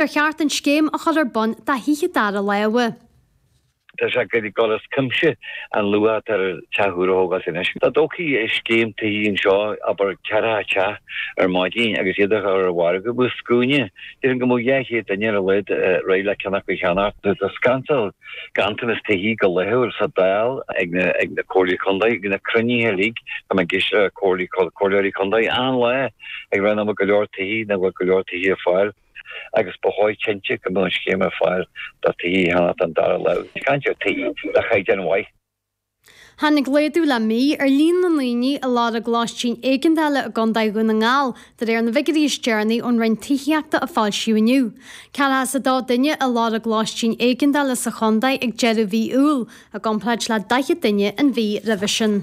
Ar cheart an scéim a chur ar bun do thithe dara láimhe? Tá sé ag goil as cuimse, an luach atá ar teach úr a thógáilt anois. Dá dtógfaí scéim tithe anseo, abair ceithre theach ar maidin agus iad a chur ar mhargadh bheadh scuaine, déarfainn go mbeadh dhá chéad duine ar a laghad réidh le ceann acu a cheannach. Tá scannal ganntanas tithe go laethúil sa Dáil, ag na Comhairlí Contae, ag na cruinnithe uilig atá ag na Comhairleoirí Contae, achan lá ag ráit nach bhfuil go leor tithe, nach bhfuil go leor tithe ar fáil. agus ba chóir cinnte go mbeadh an scéim ar fáil do tithe a cheannacht den dara láimh, is caint ar tithe de chaighdeán mhaith. Tháinig laghdú le mí ar líon na ndaoine ag lorg lóistín éigeandála i gContae Dhún na nGall, de réir na bhfigiúirí is deireanaí ón Roinn Tithíochta a foilsíodh inniu. Ceathracha is 2 duine ag lorg lóistín éigeandála sa chontae ag deireadh mhí Iúil, i gcomparáid le 40 duine an mhí roimhe sin.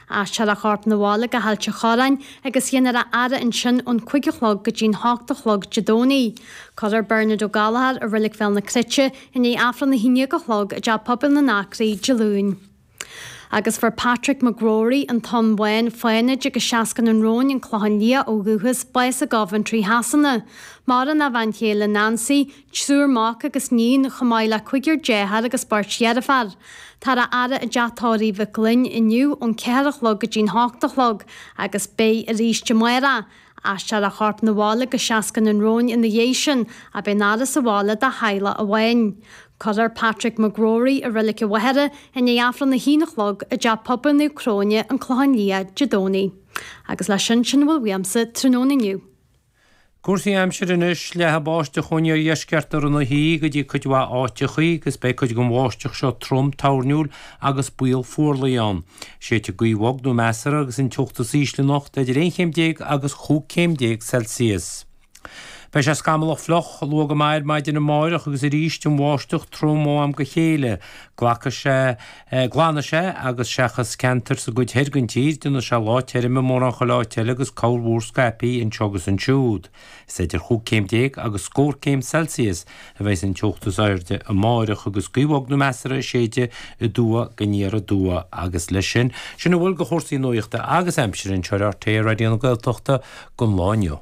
Aistreofar a chorp 'na bhaile go hAilt a' Chorráin agus déanfar a fhaire ansin ón cuig a chlog go dtí'n hocht a chlog Dé Domhnaigh. Cuirfear Bernard Ó Gallchóir i Reilig Bhéal na Cruite i ndiaidh Aifreann a haon dhéag a chlog i dTeach Pobail na nAcraí Dé Luain. Agus fuair Patrick McGrory, an Tóin Bhán, Fánaid agus Seascann an Róin, an Clochán Liath, ó dhúchas, bás i gCoventry Shasana. Maireann a bhean chéile, Nancy, triúr mac agus níon, chomh maith le cúigear dearthár agus beirt dheirfiúr. Táthar á fhaire i dTeach Tórraimh Mhic Fhloinn inniu ón ceathair a chlog go dtí'n hocht a chlog agus beidh aríst amárach. Aistreofar a chorp 'na bhaile go Seascann an Róin ina dhéidh sin ach beidh an fhaire sa bhaile dá theaghlach amháin. Cuirfear Patrick McGrory i Reilig an Mhachaire i ndiaidh Aifreann a haon a chlog i dteach pobail Naomh Cróine, An Clochán Liath, Dé Domhnaigh. Agus leis sin, sin a bhfuil uaimse tráthnóna inniu. Cúrsaí aimsire anois, leathfaidh an bháisteach ón iardheisceart ar feadh na hoíche go dtí cuid mhaith áiteachaí agus beidh cuid den bháisteach seo trom toirniúil agus baol fuarlaigh ann. Séidfidh gaoth bhog nó measartha agus an teocht is ísle anocht idir aon chéim déag agus chúig céim déag Celsius. Beidh sé scamallach fliuch luath go maith ar maidin amárach agus arís an bháisteach trom ó am go chéile. Glacfaidh sé. Glanfaidh sé, agus seachas ceantair sa gcuid thoir den tír, déanfaidh sé lá tirim i mórán chuile áit eile agus corrmhúr scaipthe anseo agus ansiúd. Is idir chúig chéim déag agus scór céim Celsius a bheas an teocht is airde amárach agus gaoth bhog nó measartha ag séideadh aduaidh go haniar aduaidh agus leis sin, sin a bhfuil de chúrsaí nuachta agus aimsire anseo ar RTÉ Raidió na Gaeltachta don lá inniu.